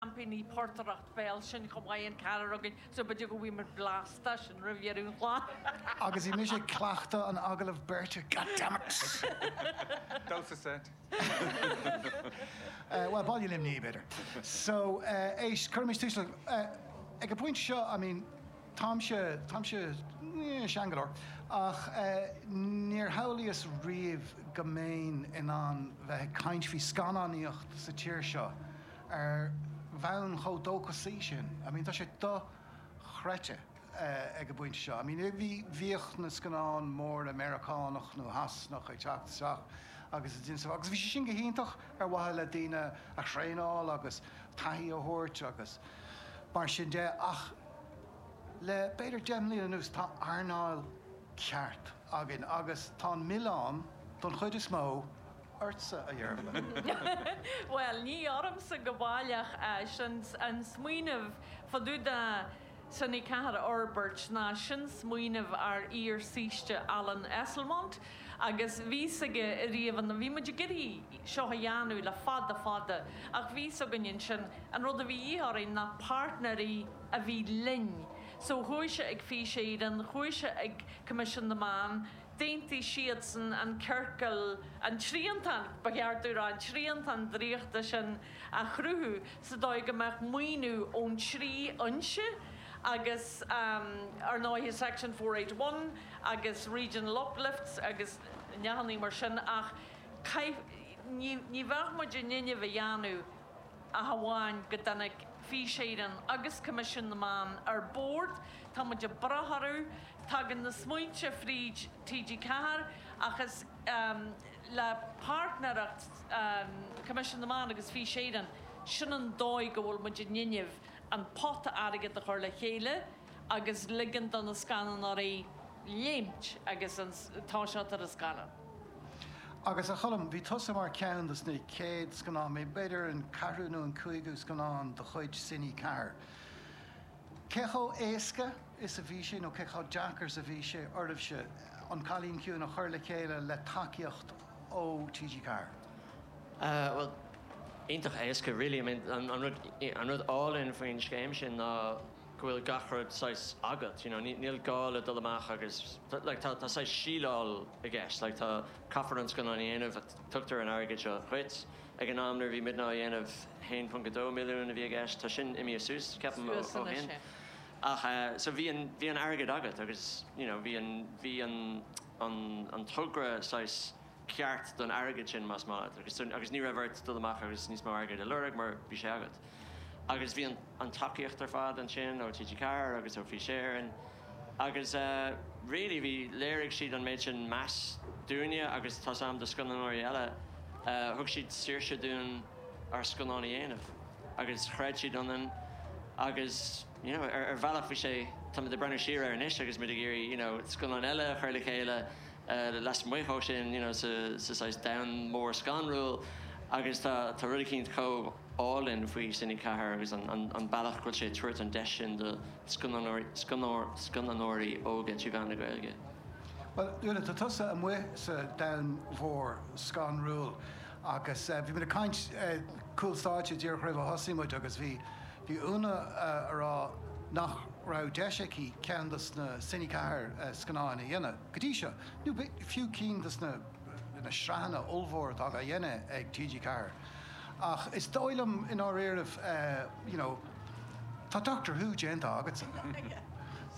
seaimpíní portaireacht béil sinn chomh maith an ceathrar againn so b'fhéidir go bhfaighidh muid blas de sin roimh dheireadh an chláir! Agus bhí mise ag cleachtadh an agallaimh beirte, goddammit! Damhsa seit. Bhuel, Ballaí Luimnigh, b'fhéidir. So, éist, cuirimis tús le, ag an bpointe seo, I mean, táimse, táimse, yeah, sean go leor, ach níor shamhlaíos riamh go mbeinn in ann bheith ag caint faoi scannánaíocht sa tír seo. ar bhonn chomh dóchasaí sin. I mean tá sé dochreidte ag an bpointe seo. I mean bhí, bhíodh na scannáin mhóra Meiriceánach nó Shasanach ag teacht isteach agus a d'inseodh agus bhí sé sin go hiontach ar mhaithe le daoine a thraenáil agus taithí a thabhairt agus mar sin de ach le b'fhéidir deich mbliana anuas tá earnáil ceart againn agus tá an milleán don chuid is mó ortsa, a Dhearbhaigh. Bhuel, ní ormsa go baileach, an smaoineamh fá dtaobh de Cine 4 a fhorbairt ná sin smaoineamh ár iar-saoiste Alan Esslemont agus bhí a fhios aige ariamh an, bhí muid ag iarraidh seo a dhéanamh le fada fada ach bhí a fhios againn ansin, an rud a bhí a dhíth orainn ná páirtnéirí a bhí linn so chuaigh sé ag Fís Éireann, chuaigh sé ag Coimisiún na Meán, d'aontaigh siadsan an ciorcal, an triantán, ba cheart dúinn a rá, an triantán draíochta sin a chruthú sa dóigh go mbeadh maoiniú ón trí fhoinse agus, ar ndóighe, Section Four Eight One agus Regional Uplifts agus neathannaí mar sin ach ní bheadh muid in innimh a dhéanamh ach amháin go dtáinig Fís Éireann agus Coimisiún na Meán ar bord, tá muid ag brath orthu, tagann na smaointe fríd TG4 ach is le páirtnéireacht Coimisiún na Meán agus Fís Éireann, sin an dóigh go bhfuil muid in innimh an pota airgid a chur le chéile agus ligean do na scannánóirí léimt agus toiseacht ar a scannán. Agus, a Choilm, bhí tusa mar ceann dos na chéad scannáin, b'fhéidir an ceathrú nó an cúigiú scannán de chuid Cine 4. Cé chomh éasca is a bhí sé, nó cé chomh deacair is a bhí sé oraibhse An Cailín Ciúin a chur le chéile le tacaíocht ó TG4? Bhuel, iontach éasca really, I mean an rud álainn faoin scéim sin ná, go bhfuil gach rud saghas agat, you know, níl gá le dul amach agus, like, tá, tá saghas síleáil i gceist, like, tá, caithfear an scannán a dhéanamh, tugtar an airgead seo dhuit. Ag an am nuair a bhí muidne á dhéanamh, 1.2 milliún a bhí i gceist, tá sin imithe suas, ceapaim, ó, ó shin. Ach eh, so bhí an, bhí an airgead agat agus, you know, bhí an, bhí an, an, an togra saghas, ceart don airgead sin más maith leat agus agus ní raibh ort dul amach agus níos mó airgid a lorg mar bhí sé agat. Agus bhí an an tacaíocht ar fad ansin ó TG4 agus ó Fís Éireann agus eh really bhí, léirigh siad an méid sin meas dúinne agus tá's a'm do scannánóirí eile eh thug siad saoirse dúinn ár scannáin a dhéanamh agus chreid siad ionainn agus you know ar ar bhealach bhí sé, táimid ag breathnú siar air anois agus muid ag iarraidh you know scannáin eile a chur le chéile lasmuigh de sin, you know, sa saghas domhan mór scanrúil agus tá rud eicínt chomh álainn faoi Cine 4 agus an bealach a bhfuil sé ag tabhairt an deis sin do scannánóirí óga trí mheán na Gaeilge. Bhuel, Úna, tá tusa amuigh sa domhan mór scanrúil agus bhí muid ag caint cúl stáitse díreach roimh a thosaigh muid agus bhí Úna ag rá nach raibh deis aici ceann dos na Cine 4 scannáin a dhéanamh. Go dtí seo, nó fiú ceann dos na na sraitheanna ollmhór atá á dhéanamh ag TG Ceathair. Ach is dóigh liom, i ndáiríribh, you know, tá Doctor Who déanta agatsa.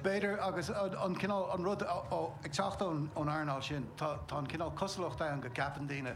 B'fhéidir, agus an cineál, an rud, ó, ag teacht ón earnáil sin, tá an cineál cosúlacht ann go gceapann daoine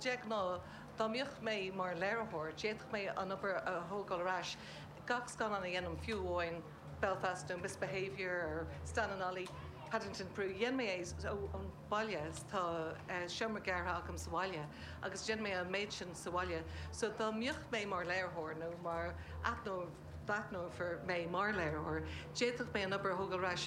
De ghnáth, dá mbeadh mé mar léiritheoir, d'fhéadfadh mé an obair a thógáil ar ais, gach scannán a dhéanaim, fiú amháin Belfast nó Misbehaviour or Stan and Ollie, Paddington in Peru, dhéan mé é ón bhaile, tá seomra gearrtha agam sa bhaile, agus déanann mé an méid sin sa bhaile. So, dá mbeadh mé mar léiritheoir, nó mar aithneofar mé mar léiritheoir, d'fhéadfadh mé an obair a thógáil ar ais,